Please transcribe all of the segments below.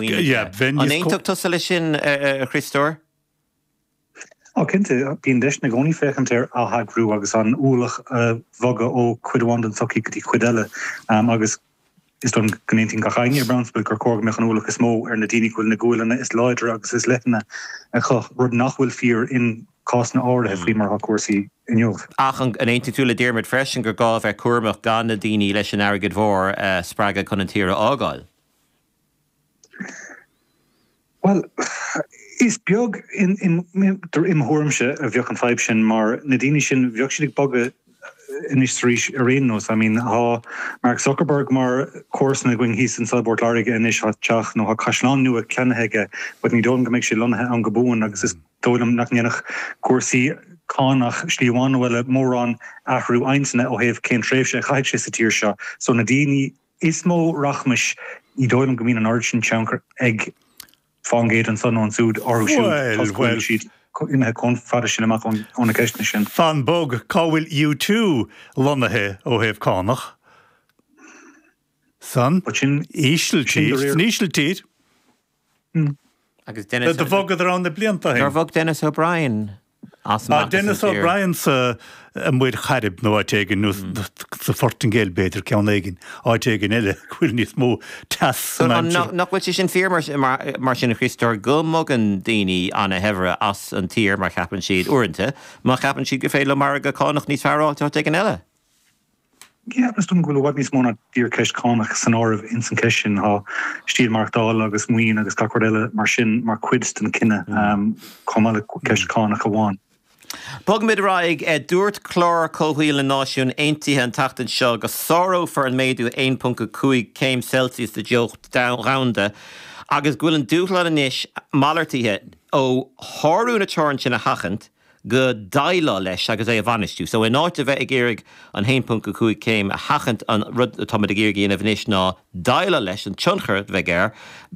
maoinithe. Yeah, bheinn níos có- An aontófá tusa leis sin, a Chriostóir? Á, cinnte, bíonn deiseanna i gcónaí féachaint ar atheagrú agus an ualach a bhogadh ó chuid amháin den tsochaí go dtí cuid eile. Um, agus is dóigh liom go n-aontódh gach éinne i bprionsabal gur cóir go mbeadh an ualach is mó ar na daoine go bhfuil na guaileanna is láidre agus is leithne acu, rud nach bhfuil fíor in cásanna áirithe faoi mar atá cúrsaí inniu. Ach an aontódh tú le Diarmuid freisin gur gá a bheith cúramach gan na daoine leis an airgead mhór a spreagadh chun an tír a fhágáil? Bhuel, is beag, im' thuairimse, a bheadh an fadhb sin mar na daoine sin, beidh siad ag bogadh anois 's arís ar aon nós. I mean, thá Mark Zuckerberg mar comharsan againn thíos anso i bPort Láirge anois, thá teach, nó thá caisleán nua ceannaithe aige but ní dóigh liom go mbeidh sé lonnaithe ann go buan agus is dóigh liom nach ndéanfadh cúrsaí cánach slí amháin nó eile mórán athrú intinne ó thaobh cén tréimhse a chaithfidh sé sa tír seo. So na daoine. Is mó rachmais. Ní dóigh liom go mbíonn an oiread sin tionchair ag fán gcéad annso nó annsúd orthu siúd so tá siad imithe comh fada sin amach ó na ceisteanna sin. Fan bog, cá bhfuil U two lonnaithe ó thaobh cánach? San Ísiltír? San Ísiltír? Agus Denis... Do bhogadar ann na blianta ó shin. Nár bhog Denis O'Brien as amach as an tír? Denis O'Brien sa Muir Chairib nó áit éigin, nó sa Phortaingéil b'fhéidir, ceann éigin, áit éigin eile go bhfuil níos mó teasa ann. Nach bhfuil sé sin fíor mar sin, a Chríostóir, go mbogann daoine ana-shaibhre as an tír mar cheapann siad, uaireanta, mar cheapann siad gur féidir leo margadh cánach níos fearr a fháilt áit éigin eile? Feictear dom go bhfuil i bhfad níos mó ná díreach ceist chánach san áireamh ins an cheist sin. Tá stíl maireachtála agus maoin agus gach rud eile mar sin mar chuid den chinneadh chomh maith le ceist chánach amháin. Bogfaimid ar aghaidh. Dúirt Clár Comhshaoil na Náisiún Aontaithe an tseachtain seo go sárófar an méadú 1.5 céim Celsius de theocht dhomhanda agus go bhfuil an dúshlán anois malartaithe ó shárú na teorann sin a sheachaint. go déileáil leis agus é a bhainistiú. So in áit a bheith ag iarraidh an 1.5 céim a sheachaint an rud atáimid ag iarraidh a dhéanamh anois ná déileáil leis an tionchar a bheidh ann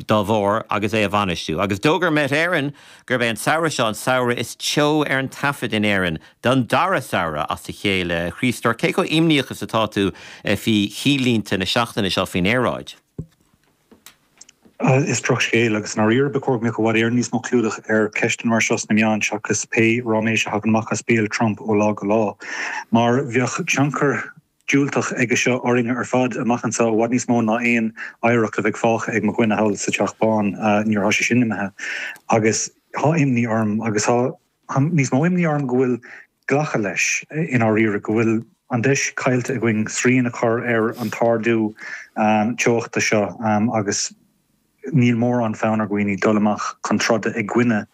dá bharr agus é a bhainistiú. Agus d'fhógair Met Éireann gurb é an samhradh seo an samhradh is teo ar an taifead in Éirinn don dara samhradh as a chéile. A Chríostóir, cé chomh imníoch is atá tú faoi chinnlínte na seachtaine seo faoin aeráid? Is droch scéal, agus i ndáiríre ba chóir go mbeadh i bhfad Éireann níos mó clúdach ar cheisteanna mar seo sna meáin seachas pé ráiméis a thagann amach as béal Trump ó lá go lá. Mar beidh tionchar diúltach aige seo orainne ar fad amach anso, i bhfad níos mó ná aon oidhreacht a bheidh fágtha ag mo dhuine thall sa Teach Bán. Nuair atá sé sin imithe, agus tá imní orm, agus tá. níos mó imní orm go bhfuil glactha leis i ndáiríre go bhfuil an deis caillte againn srian a chur ar an t-ardú teochta seo agus níl mórán fonn ar dhaoine dul amach chun troda i gcoinne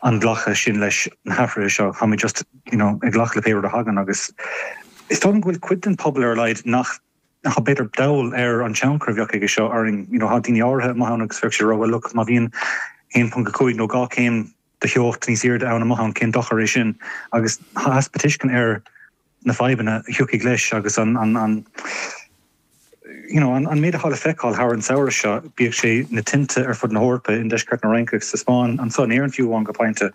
an ghlactha sin leis na hathruithe seo. Táimid just you know ag glacadh le pé rud a thagann agus is dóigh liom go bhfuil cuid den pobal ar a laghad atá b'fhéidir dall ar an tionchar a bheadh aige seo orainn. You know tá daoine áirithe amuigh ann agus bheadh siad ag rá bhuel look má bhíonn 1.5 nó 2 céim de theocht níos aoirde ann amach ann, cén dochar é sin agus easpa tuisceana ar na fadhbanna a thiocfaidh leis agus an you know an méid atá le feiceáil thar an samhradh seo, bíodh sé na tinte ar fud na hEorpa, i ndeisceart na Fraince agus sa Spáinn, anso in Éirinn fiú amháin go pointe,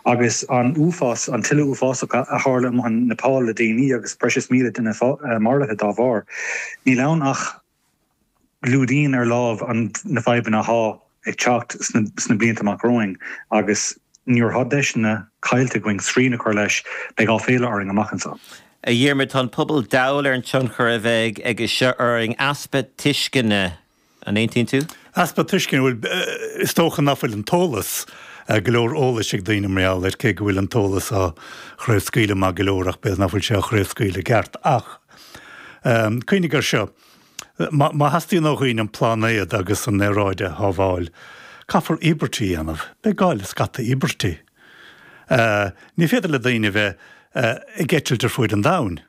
agus an uafás, an tuile uafásach a tharla amuigh i Neipeal le déanaí agus breis is míle duine maraithe dá bharr. Níl ann ach. gclúdaíonn ar láimh na fadhbanna athá ag teacht sna blianta amach romhainn agus nuair athá deiseanna caillte againn srian a chur leis beidh áiféala orainn amach anso. A Dhiarmuid, tá an pobal dall ar an tionchar a bheidh aige seo orainn, easpa tuisceana, an aontaíonn tú? Easpa tuisceana, bhuel is dócha ná fuil an t-eolas, go leor eolais ag daoine mar gheall air cé go bhfuil an t-eolas á chraobhscaoileadh maith go leor ach b'fhéidir ná fuil sé á chraobhscaoileadh i gceart ach, Cuimhnigh ar seo, má theastaíonn ó dhaoine an pláinéad agus an aeráid a shábháil, caithfear íobairtí a dhéanamh. Beidh gá le scata íobairtí. Ní féidir le daoine a bheith ag eitilt ar fuaid an domhain.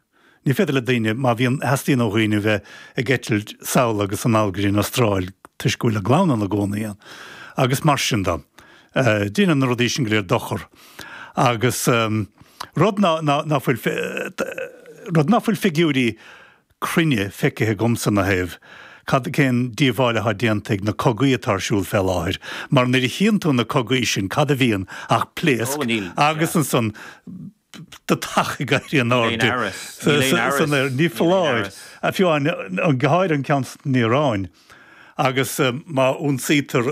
Ní féidir le daoine, má bhíonn, theastaíonn ó dhaoine a bheith ag eitilt sall agus anall go dtí an Astráil toisc go bhfuil a gclann ann i gcónaí. Agus mar sin de. Deineann na rudaí sin go léir dochar agus rud ná fuil rud ná fuil figiúirí cruinne feicithe agamsa ina thaobh, cad, cén díobháil athá déanta ag na cogaí atá ar siúl fé láthair, mar nuair a chíonn tú na cogaí sin cad a bhíonn ach pléasc agus ansan deatach ag éirí in airde san aer. Ní foláir, fiú amháin go háirithe an ceann san Iaráin agus má ionsaítear,